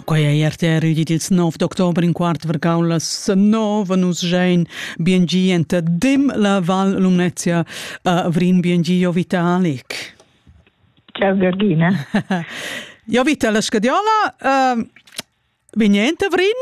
Quei ei RTR udit ils 9 d'october in quart vargau las 9 nus gein bien gi enta dim la Val Lumnezia a Vrin bien gi jo vita Alik. Ciao Georgina. jo vita la scadiola uh, vignente Vrin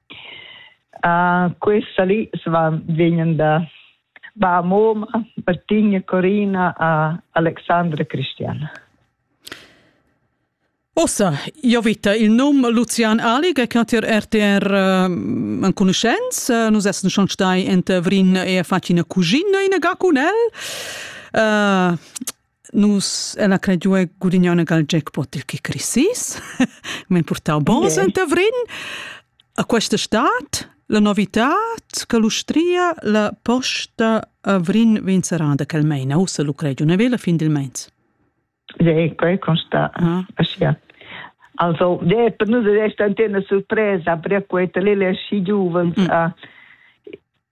Uh, questa lì vegnan da ba Moma, Martina, Corina a Alexandra Cristiana. Ossa, io vita il num Lucian Ali che natir RTR uh, enconoscenz, uh, nus essen schon stai ent Vrin e facina cugina in ga cun el. Uh, Nus en la cregiua gudignona gal jackpot il chi crisis. M'han portau bons okay. enta Vrin. A questa stat la novità che l'Ustria la posta a Vrin vegn serrada quel meina ussa lu cregiu ne vela fin dil mens. Sì, quei consta. Ah. Aschia. Also, de, per nus è stata una sorpresa, per quei lì le sci giovani mm. a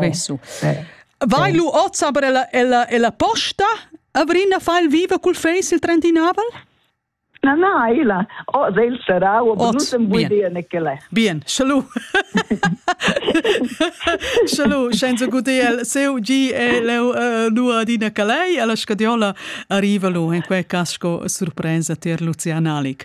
Vessu. Vai lu oz aber ella, ella, ella posta? Avrina fa il viva col face il trentinavel? Na, na, illa. Oh, del sarà, o benuttem vui dir Nichele. Bien, salut. salut, senza guder seu gi e leu lu adina calei, alla scadiola arriva lu in quei cas sco surpresa tier Lucian Alic.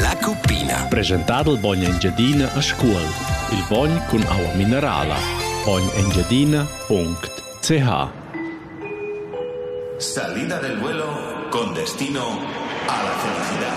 La cuppina. Presentar il bogn Engiadina a Scuol. Il bogn cun aua minerala. Bognengiadina.ch Salida del vuelo con destino a la felicidad.